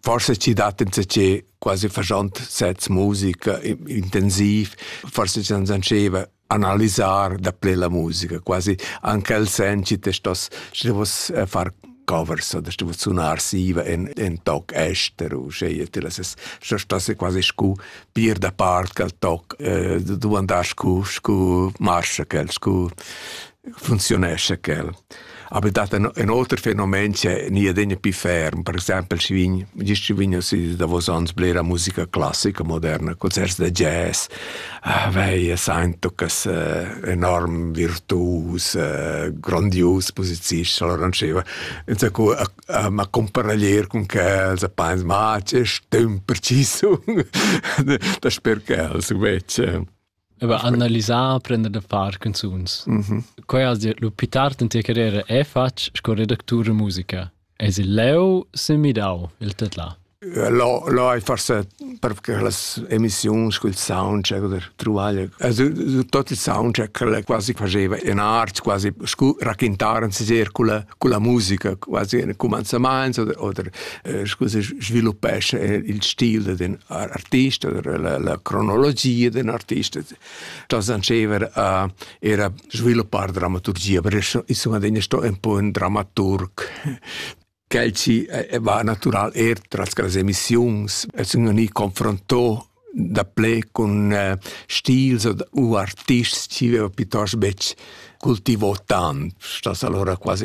Forse ci dat insatge quasi fagiant sets musica intensiv, forse ci non sanceva analisar da ple la musica, quasi anche il sen ci te stos stos eh, far covers oder sto sunar siva en en toc ester u scegliere la ses sto stosse quasi scu pir da part cal toc eh, du andar scu scu marcia cal scu funziunescha quel. Aber dat ein, ein oter fenomen che ni adegna pi ferm, per exempel schi vegn, gist schi vegn si davos ans blera musica classica moderna, concerts da jazz, ah, veia saintucas eh, enorm virtuus, eh, grandius posizisch, allora diceva, insacco ma comparaglier con quels, a pains, ma c'è stem preciso, da sper quels, invece. Aber analisar, prender da far canzuns. Mm -hmm. Quai has dit, lu più tard in tua carriera è fatg sco redactur de musica. Es il leu se midau il tetla? Lo, lo hai forse perché le emissioni col soundcheck oder trovare also tutto il soundcheck quasi quasi faceva in art quasi raccontavano si circolo con la musica quasi in commenzament oder, oder eh, scusi, sviluppesce eh, il stile d'un artista, la, la cronologia d'un artista. Das anceva a era sviluppar dramaturgia, perché insomma sto un po' un dramaturg Kelci eh, va natural er tras las emissiuns, es un ni confronto da ple con uh, stils u artists che aveva piuttosto bec cultivò tanto, sta allora quasi